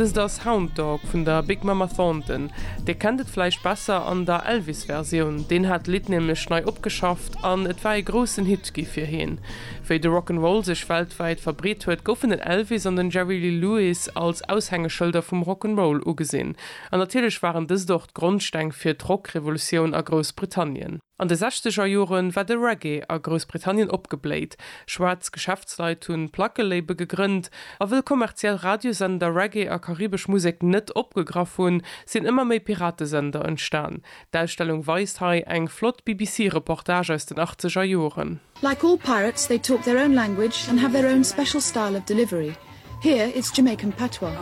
Dëst ass Hound Dog vun der Big Mama Thornton. Dir kennt et vläicht besser an der Elvis-Versioun, deen hat d'Lidd nämlech nei opgeschafft an et war ee groussen Hit gi fir heen. Wéi de Rock 'n' Roll sech weltwäit verbreet huet, goufen den Elvis an den Jerry Lee Lewis als Aushängeschëlder vum Rock 'n' Roll ugesinn. An natierlech waren dëst och d'Grondsteng fir d'Rock-Revolutioun a Groussbritannien. An de sechzeger Jore war de Reggae a Groussbritannien opgebléit. Schwaarz Geschäftsleit hu Plackelabel gegrënnt, a wëll kommerziell Radiosender Reggae a karibesch Musek net opgegraff hunn, sinn ëmmer méi Piratesender entstan. D'Ausstellung weist hei eng flott BBC-Reportage aus den achtzeger Joren. Like all pirates they talk their own language and have their own special style of delivery. Here it's Jamaican patois.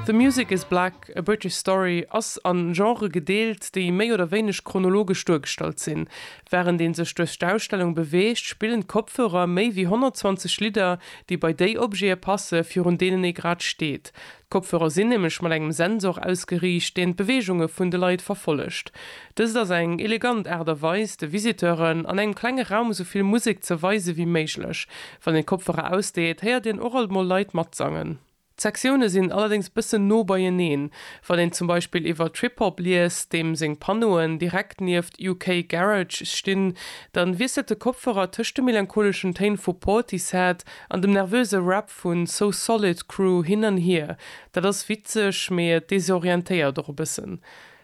The music is black, A British Story ass a Genrë gedeelt, déi méi oder wéineg chronologesch duergestallt sinn. Wärend ee sech duerch d'Ausstellung beweegt, spillen d'Kopfhörer méi wéi 120 Lidder, déi bei déi Objete passen, virun deenen ee grad steet. D'Kopfhörer sinn nämlech mat engem Sensor ausgeriicht, deen d'Beweegunge vun de Leit verfollegt. Dëst ass eng elegant Aart a Weis, de Visiteuren an engem klenge Raum esou vill Musek ze weise wéi méiglech. Wann een d'Kopfhörer ausdeet, héiert een och alt mol Leit matsangen. D'Sektioune sinn allerdéngs bëssen no beieneen. Wann een zum Beispill iwwer Trip-Hop liest, deem seng Panneauen direkt nieft UK Garage stinn, dann wiesselt de Kopfhörer tëscht de melancholeschen Téin vu Portishead an dem nervöse Rap vu So Solid Crew hin an hier. Dat ass witzeg, mee et desorientéiert och e bëssen.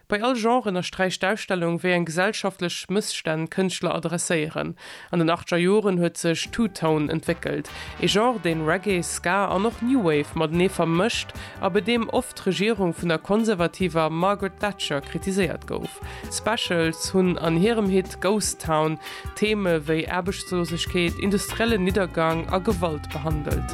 Bei all Genre ënnersträicht d'Ausstellung, wéi eng gesellschaftlech Mësstänn d'Kënschtler adresséieren. An den achtger Joren huet sech Two-Tone entwéckelt, ee Genre, deen Reggae, Ska an och New Wave matenee vermëscht a bei deem oft d'Regierung vun der konservativer Margaret Thatcher kritiséiert gouf. D'Specials hunn an hirem Hit Ghost Town Theme wéi Aarbechtslosegkeet, industriellen Niddergang a Gewalt behandelt.